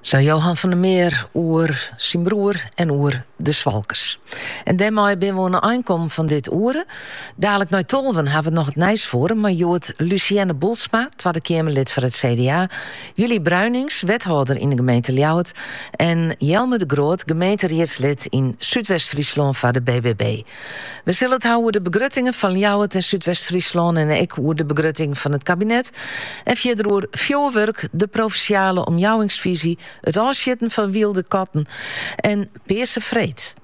Sa Johan van der Meer oer syn broer en oer de Swalkes. En dêrmei binne we oan de ein kommen fan dit oere. Dadelijk nei tolven hawwe we noch it Nijsfoarum, mei hjoed Luciënne Boelsma, Twadde Keamerlid foar it CDA, Julie Bruijnincx, wethâlder yn de gemeente Ljouwert, en Jelmer de Groot, gemeenteriedslid yn Súdwest-Fryslân foar de BBB. We sille it hawwe oer de begruttingen fan Ljouwert en Súdwest-Fryslân en ek oer de begrutting fan it kabinet en fierder oer fjurwurk, de provinsjale omjouwingsfyzje, it ôfsjitten fan wylde katten en Pearse Freed.